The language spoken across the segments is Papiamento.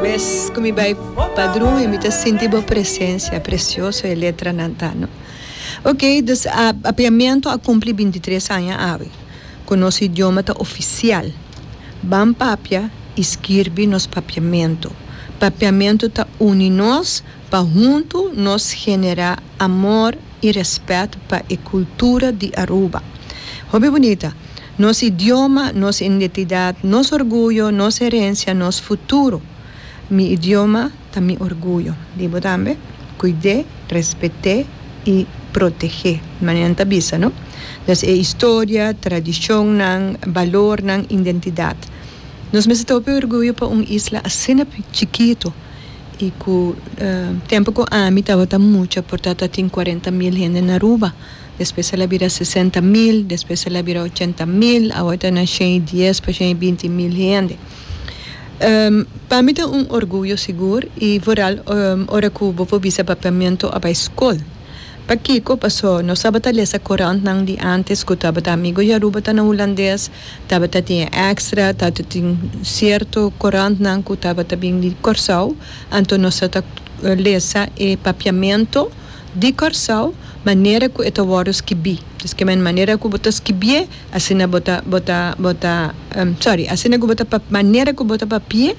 Mes cu mi bay padrun y mi ta sinti bo presencia, precioso e letranan ta no. Ok, dus a Apiamiento a cumpli binti tres aña awe, cu nos idioma ta oficial. Ban papia y skirbi nos Papiamento. Papiamento ta uni nos pa huntu nos genera amor. y respet pa e cultura di Aruba. Hopi bunita! Nos idioma, nos indetidad, nos orguyo, nos herencia, nos futuro. Mi idioma ta mi orguyo. Di bo tambe? Cuide, respete y protege, manera nan ta bisa, no? Des e historia, tradicionnan, balornan, indentidad. Nos mester ta hopi orguyo pa un isla asina chikito. y cu tempo cu ami tabata mucha por tata tin cuarenta mil hende na Aruba, despues el a bira sesenta mil, despues el a bira ochenta mil, awe ta na shen y dies pa shen y binti mil hende. Pa mi ta un orguyo sigur y vooral ora cu bo por bisa Papiamento a bay scol. Pakico? Paso nos tabata lesa corantnan di antes cu tabata amigo di Aruba ta na Hulandes, Tabata tin e extra, tato tin cierto corantnan cu tabata bin di Corsou, anto nos ta ta lesa e papiamento di Corsou manera cu e ta wordo skibi. Pues kema en manera cu bo ta skibié, asina bo ta bo ta bo ta, sorry, asina cu bo ta pap, manera cu bo ta papié,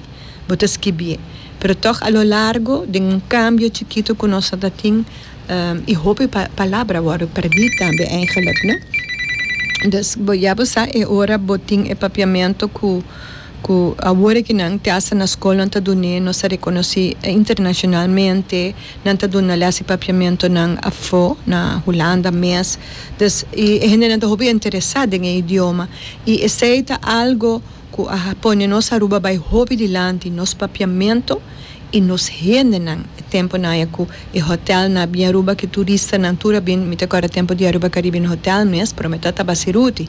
bo ta skibié. Pero toch a lo largo den un cambio chikito cu nos a ta tin, y hopi palabra worde perdi tambe eigenlic no dus ya bo sa e ora bo tin e papiamento cu cu awor aki nan te hasta na school nan ta dun'e nos ta reconoci internacionalmente nan ta duna les e papiamento nan afo na Hulanda mes dus y e hendenan ta hopi interesa den e idioma y esey ta algo ku a pone nos Aruba bai hopi dilanti, nos papiamentu i nos hendenan. E tempunan aya ku e hotelnan a bin Aruba, ku e turistanan tur a bin, mi ta kòrda tempu di Aruba Caribbean Hotel mes, promé ta tabaseruti.